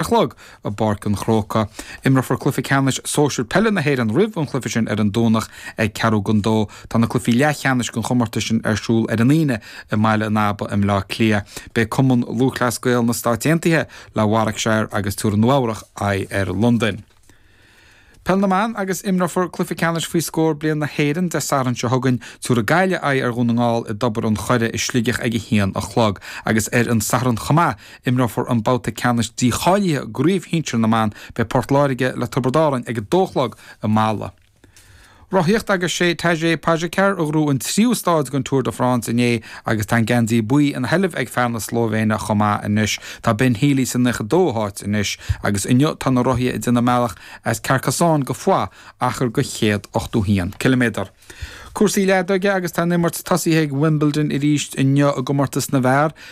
a chlog i bPáirc an Chrócaigh. Imreofar cluiche ceannais sóisir peile na hÉireann roimh an chluiche sin ar an Domhnach ag ceathrú don dó. Tá na cluichí leathcheannais den chomórtas sin ar siúl ar an Aoine i mBaile an Aba i mBleá Cliath. Beidh Cumann Lúthchleas Gael na Stáit Aontaithe le Warwickshire agus tabharfaidh Nua-Eabhrac aghaidh ar Londain. Peil na mBan agus imreofar cluiche ceannais faoi scór bliain na hÉireann Dé Sathairn seo chugainn. Tabharfaidh Gaillimh aghaidh ar Dhún na nGall i dTobar an Choire i Sligeach ag a haon a chlog agus ar an Satharn chomh maith, imreofar an babhta ceannais dícháilithe i gCraobh Shinsir na mBan. Beidh Port Láirge le Tiobraid Árann ag a dó a chlog i Mala. Rothaíocht agus sé Tadej Pogačar a ghnóthaigh an tríú stáid den Tour de France inné agus tá an geansaí buí ina sheilbh ag fear na Slóivéine chomh maith anois. Tá Ben Healy sa naocha dóú háit anois agus inniu tá na rothaithe ag déanamh a mbealach as Carcassonne go Foix, achar de céad ochtó haon ciliméadar. Cúrsaí leadóige agus tá an imirt tosaithe ag Wimbledon arís inniu i gcomórtas na bhfear.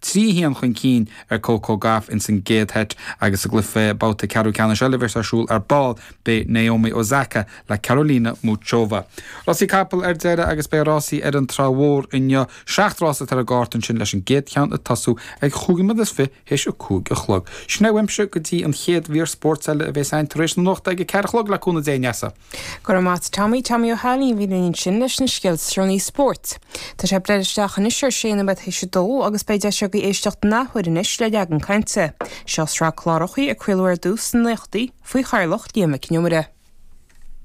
trí haon chun cinn ar Coco Gauff ins an gcéad sheit agus sa gcluiche babhta ceathrú ceannais eile a bheas ar siúl ar ball, beidh Naomi Osaka le Karolina Muchova. Rásaí capall ar deireadh agus beidh rásaí ar an Trá Mhór inniu. Seacht rása atá ar an gcárta ansin leis an gcéad cheann ag tosú ag chúig nóiméad is fiche théis a cúig a chlog. Sin é uaimse go dtí an chéad mhír spóirt eile a bheas a'inn tar éis na nuachta ag a ceathair a chlog le cúnamh Dé a Neasa. Go raibh maith 'ad Tommy, Tommy Ó hAilín, a bhí linn ansin leis na scéalta is deireanaí spóirt. Tá sé ag breith isteach anois ar sé nóiméad théis a dó agus beidh deis agaibh éisteacht in athuair anois le Leagan Cainte. Seo sraith clárachaí a craoladh ar dtús sna naochtaí faoi chathaoirleacht Liam Mac Con Iomaire.